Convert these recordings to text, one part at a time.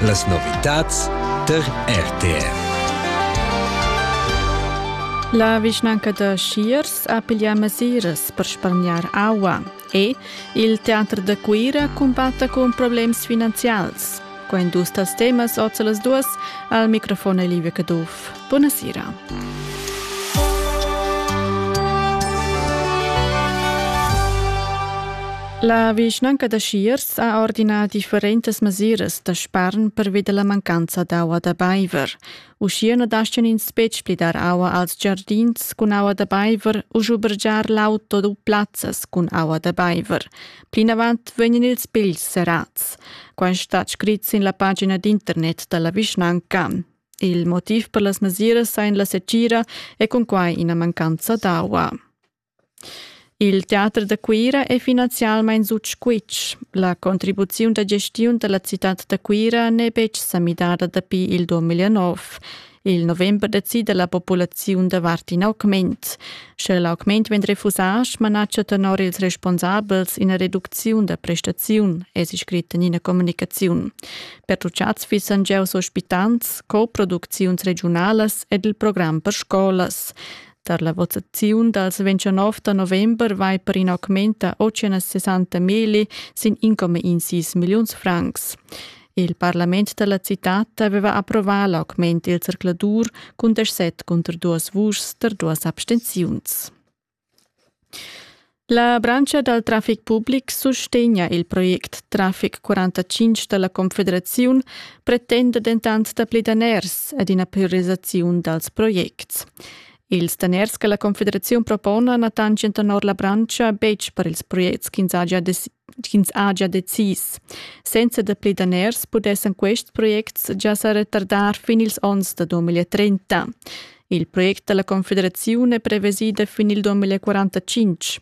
Las novitads tar RTR. La vischnanca da Schiers ha piglià mesiras per spargnar aua e il teater da Cuira cumbatta cun problems finanzials. Qua industria temas oz las duas al microfon Livia Caduff. Buonasera. La vischnanca da Schiers ha ordinà differentas mesiras da spargn pervi da la mancanza d'aua da baiver. Uschia na daschian ins betg pli dar aua als giardins cun aua da baiver u schubergiar l'auto u plazzas cun aua da baiver. Plinavant vegnan ils pigls serrads. Quai stat scrit sin la pagina d'internet da la vischnanca. Il motiv per las mesiras sain la secira e cun quai ina mancanza d'aua. Il teater da Cuira è finanzialmain sut squitsch. La contribuziun da gestiun da la citad da Cuira n'è betg sa midada dapi il 2009. Il november decida la populaziun davart in augment. Sche l'augment vegn refusà, smanatscha tenor ils responsabels ina reducziun da prestaziun, è scrit en ina communicaziun. Pertuchads fissan giaus ospitants, co-producziuns regiunalas ed il program per scolas. Tar la votaziun dals 29 da november vai per in augmenta 860 meli sin 1,16 milliuns francs. Il parlament da la citad aveva approvà l'augment il zercladur cun 17 cunter duas vuschs per duas abstenziuns. La branscha dal traffic public sustegna il project Traffic 45 da la Confederaziun, pretenda dentant dapli daners ed ina priorisaziun dals projects. Ils daners che la Confederaziun propona na tanschan tenor la branscha betg per ils projects ch'ins haja ch'ins ha gia decis. Senza da pli daners pudessan quests projects gia sa retardar fin ils onns da 2030. Il project dalla Confederazione è prevesida fin il 2045.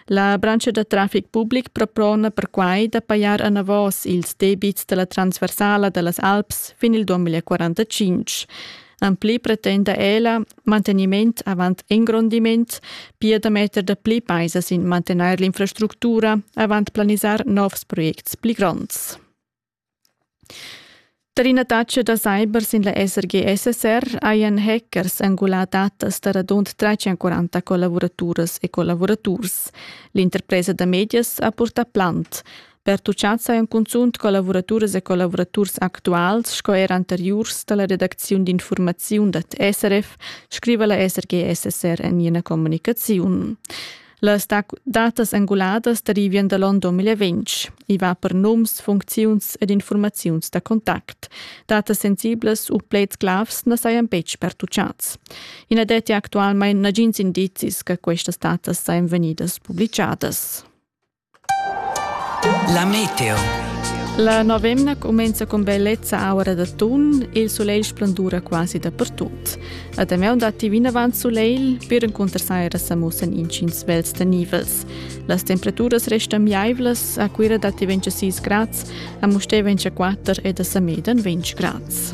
La branca da traffic public propona perquai da pajar anavos ils debits dalla transversala dallas Alps fin il 2045. En pli pretenda ella manteniment avant engrondiment, pia da metter da pli paisa sin mantenair l'infrastructura avant planisar novs projects pli gronds. Per ina taxa da cyber sin la SRG-SSR hajan hackers angulà datas da radund 340 collavuraturas e collavuraturs. L'interpresa da medias ha purtà plant. pertuchanza en cunzunt collavuraturas e collavuraturs actuals sco er anteriurs da la redacziun d'infurmaziun dad SRF, scriva la SRG-SSR en ina communicaziun. Las datas anguladas derivian da l'onn 2020. I va per nums, funcziuns ed informaziuns da contact. Datas sensiblas u pleds glavs na sajan betg pertuchads. I na detti actualmain nagins indizis che questas datas sajan vegnidas publicadas. La meteo. La novemna cumenza con bellezza aura d'atun e il solegl splendura quasi dappertut. A Damian datti vinavant solegl per encunter saira sa mussan intgins vels tanivels. Las temperaturas restan miaivlas, a Cuira datti 26 grads, a Mustè 24 ed a Samedan 20 grads.